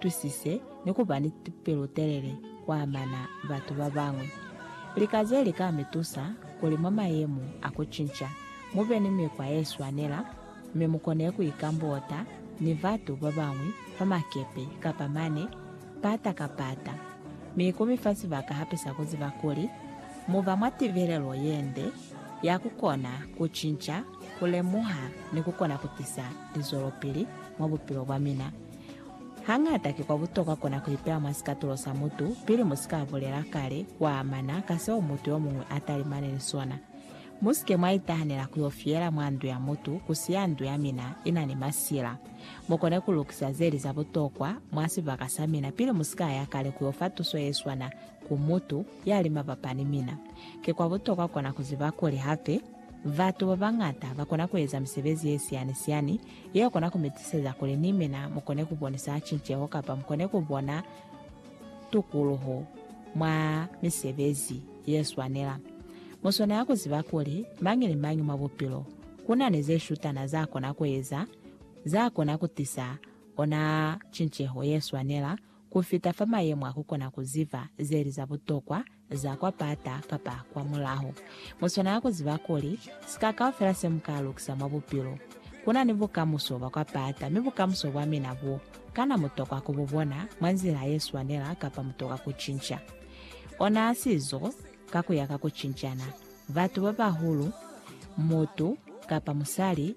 twisise ni ku ba ni pelutelele ku amana batu ba bañwi. Lika ze li ka mi tusa kuli mwa mayemo a ku cinca, mu be ni mikwa ye swanela mi mu kone ku ikambota ni batu ba bañwi fa makepe kapa mane pata ka pata. Mi ku mi fa sibaka hape sa ku ziba kuli mu ba mwa tibelelo ye nde ya ku kona ku cinca, ku lemuha ni ku kona ku tisa lizwelopili mwa bupilo bwa mina. Hañata ki kwa butokwa kona ku ipeya mwa sikatulo sa mutu pili mu si ka bulela kale kwa amana ka seo mutu yo muñwi a talimane ni sona. Mu si ke mwa itahanela ku yo fiyela mwa ndu ya mutu ku siya ndu ya mina i na ni masila. Mu kone ku lukisa ze li za butokwa mwa sibaka sa mina pili mu si ka ya kale ku yo fa tuso ye swana ku mutu ya li mabapa ni mina. Ki kwa butokwa kona ku ziba kuli hape batu ba bañata ba kona ku eza misebezi ye siyani-siyani Yeo kona ku mi tiseza kuli ni mina mu kone ku bonisa cinceho kapa mu kone ku bona tukuluho mwa misebezi ye swanela. Mu swanela ku ziba kuli mañi ni mañi mwa bupilo ku na ni ze shutana za kona ku eza za kona ku tisa ona cinceho ye swanela ku fita fa mayemo a ku kona ku ziba ze li za butokwa za kwa pata kapa kwa mulaho. Mu swanela ku ziba kuli, sika kaufela se mu ka lukisa mwa bupilo, ku na ni bukamuso bwa kwa pata, mi bukamuso bwa mina bo, kana mu tokwa ku bu bona mwa nzila ye swanela kapa mu tokwa ku cinca ona sizo ka ku ya ka ku cincana? Batu ba bahulu, mutu kapa musali,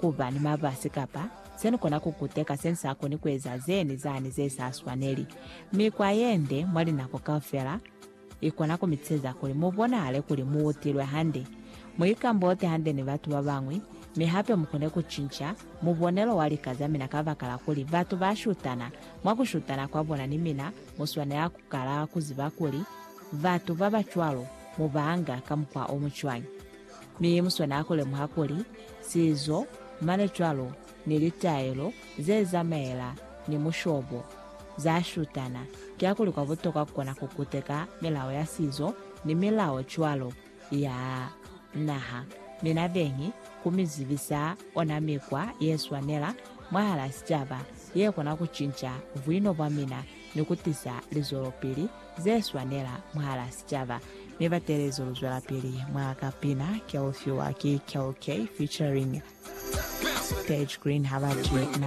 ku ba ni mabasi kapa se ni kona ku kuteka se ni sa koni ku eza ze ni zani ze sa swaneli. Mikwa ye nde mwa linako kaufela i kona ku mi tisheza kuli mu bonahale kuli mu utilwe hande, mu ikambote hande ni batu ba bañwi, mi hape mu kone ku cinca mubonelo wa lika za mina kabakala kuli batu ba shutana. Mwa ku shutana kwa bona ni mina, mu swanela ku kala ku ziba kuli batu ba ba cwalo mu ba anga ka mukwa o mu cwañi. Mi mu swanela ku lemuha kuli, sizo, mane cwalo, ni litaelo ze zamaela ni mushobo, za shutana. Kiakuli kwa butokwa ku kona ku kuteka milao ya sizo ni milao cwalo ya naha, mi na beñi ku mi zibisa ona mikwa ye swanela mwahal'a sicaba, ye kona ku cinca buino bwa mina ni ku tisa lizwelopili ze swanela mwahala sicaba, mi ba teelezi lu zwelapili mwa ka pina ke u fiwa ki KOK featuring Stage Green ha ba twi na.